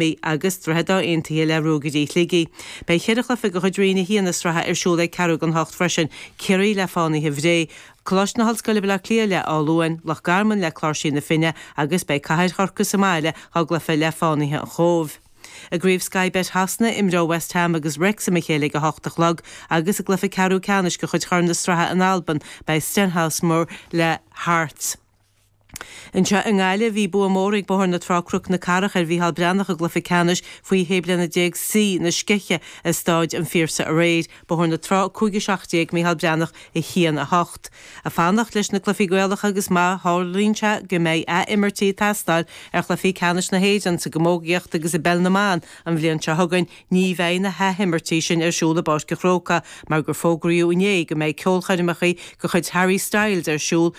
Beidh agus Droichead Átha Aontaithe le Ruagairí Shligigh. Beidh ceithre chluiche de chuid Roinn 1 na sraithe ar siúl ag ceathrú don ocht freisin, Ciarraí le Fánaithe Bhré, Coláiste na hOllscoile Baile Átha Cliath le Áth Luain, Loch Garman le Cláirsigh na Finne agus beidh Cathair Chorcaí sa mbaile dá gcluiche le Fánaithe an Chóibh. I gCraobh Sky Bet Shasana, imreoidh West Ham agus Wrexham a chéile ag a hocht a chlog agus i gcluiche ceathrú ceannais de chuid Chorn na Sraithe in Albain, beidh Stenhousemuir le Hearts. Anseo i nGaillimh, bhí bua mór ag Bóthar na Trá-Cnoc na Cathrach ar Mhícheál Breathnach i gcluiche ceannais faoi shé bliana déag C na Sceiche i Stáid an Phiarsaigh aréir, Bóthar na Trá 5 17 Mícheál Breathnach 1 8. Ag fanacht leis na cluichí Gaelacha agus má tharlaíonn sé go mbeidh athimirtí ag teastáil ar chluichí ceannais na hÉireann sa gcamógaíocht agus i bpeil na mban an bhliain seo chugainn, ní bheidh na hathimirtí sin ar siúl i bPáirc an Chrócaigh mar gur fógraíodh inné go mbeidh ceolchoirmeacha de chuid Harry Styles ar siúl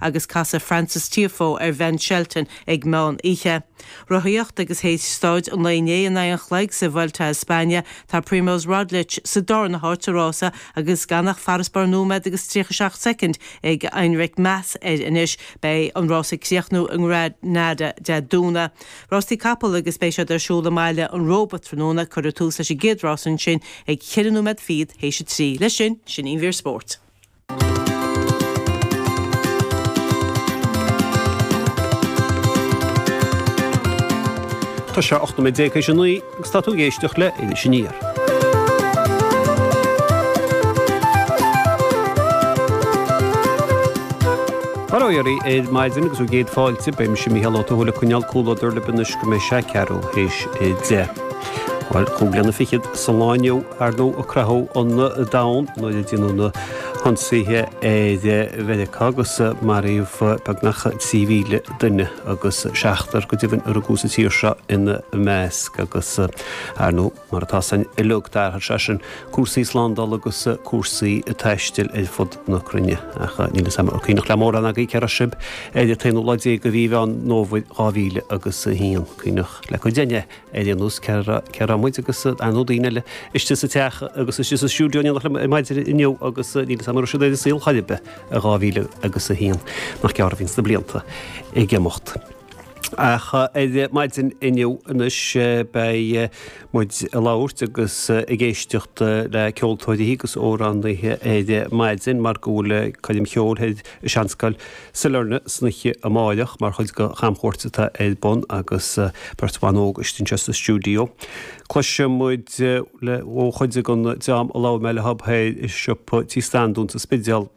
agus casfaidh Frances Tiafoe ar Bhen Shelton ag meán oíche. Rothaíocht agus théis stáid an lae inné in aghaidh an chloig sa Vuelta a España, tá Primoz Roglic sa darna háit sa rása agus gan ach farasbarr nóiméad agus 37 soicind ag Enric Mas air anois. Beidh an rás ag críochnú i nGranada Dé Domhnaigh. Rástaí capall agus beidh siad ar siúl i mBaile an Róba tráthnóna. Cuirfear tús leis an gcéad rás ansin ag ceithre nóiméad fichead théis a trí. Leis sin, sin an mhír spóirt. Tá sé 18 nóiméad théis a 9 agus tá tú ag éisteacht le Iris Aniar. Móra dhaoibh ar maidin agus bhur gcéad fáilte, beidh mise Mícheál Ó Tuathail ag coinneáil comhluadar libh anois go mbeidh sé ceathrú théis a deich. Bhuel, cúig bliana fichead sa lá inniu. Ar ndóigh, a craitheadh an domhan nuair a déanadh na hionsaithe ar Mheiriceá agus maraíodh beagnach 3,000 duine agus seachtar go deimhin a rugadh sa tír seo ina measc agus, ar ndóigh, mar atá 'fhios a'inn uiliog, d'athraigh sé sin cúrsaí slándála agus cúrsaí taistil ar fud na cruinne. Ach níl 'fhios a'm an cuimhneach le mórán agaí cé raibh sib ar an aonú lá déag de mhí Mheán Fómhair 2001, cuimhneach le cuid a'inn Ar aon nós, cé raibh muid agus ar ndóigh daoine eile istigh sa teach agus istigh sa stiúideo in éineacht liom maidin inniu agus níl 'fhios a'm an raibh siad ar an saol chor ar bith i dhá mhíle agus a haon, nach gearr a bhíonns na blianta ag imeacht. Ach ar maidin inniu anois beidh muid ag labhairt agus ag éisteacht le ceoltóirí agus amhránaithe ar maidin mar go bhfuil Coirm Cheoil i Seanscoil Sailearna san oíche amáireach mar chuid de chamchuairt atá ar bun agus beirt bhan óg istigh anseo sa stiúideo. Cloisfidh muid ó chuid den dream a labhair mé leo thoir i siopa Tí Standún sa Spidéal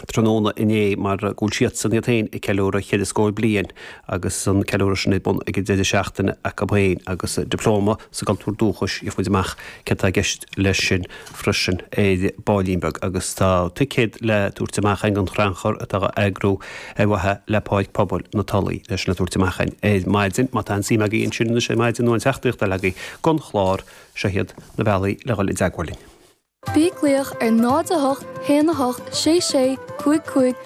tráthnóna inné mar go bhfuil siadsan iad féin ag ceiliúradh ceithre scór bliain agus an ceiliúradh sin ar bun ag an deireadh seachtaine acu féin agus Dioplóma sa gCultúr Dúchais. Gheobhaidh muid amach céard atá i gceist leis sin. freisin ar baillín beag agus tá ticéad le tabhairt amach againn don chrannchur atá á eagrú ar mhaithe le Páirc Pobail na Tulaí leis sin le tabhairt amach againn ar maidin. Má tá aon suim agaibh ansin anois ar maidin nó aon teachtaireacht eile agaibh don chlár, seo iad na bealaí le dhul i dteagmháil linn. Bí ag glaoch ar 08 1 8 6 6 5 5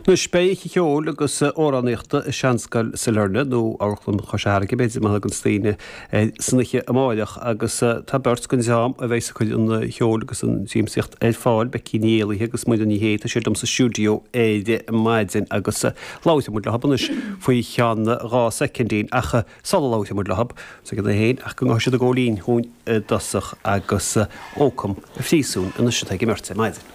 Anois beidh oíche cheoil agus amhránaíochta i Seanscoil Sailearna, nó Amharclann Chois Fharraige, b'fhéidir, mar a thuganns daoine air san oíche amáireach, agus tá beirt den dream a bheas ag cur an cheoil agus an tsiamsaíocht ar fáil, Becky Ní Éallaithe agus Muireann Ní Shé, tá siad liom sa stiúideo ar maidin agus labhróidh muid leo anois faoi cheann dhá soicindín, ach sula labhróidh muid leo, soicind é féin, ach go ngabhfaidh siad ag gabháil fhoinn dúinn i dtosach agus Ócam an Phríosúin anois atá ag an mbeirt ar maidin.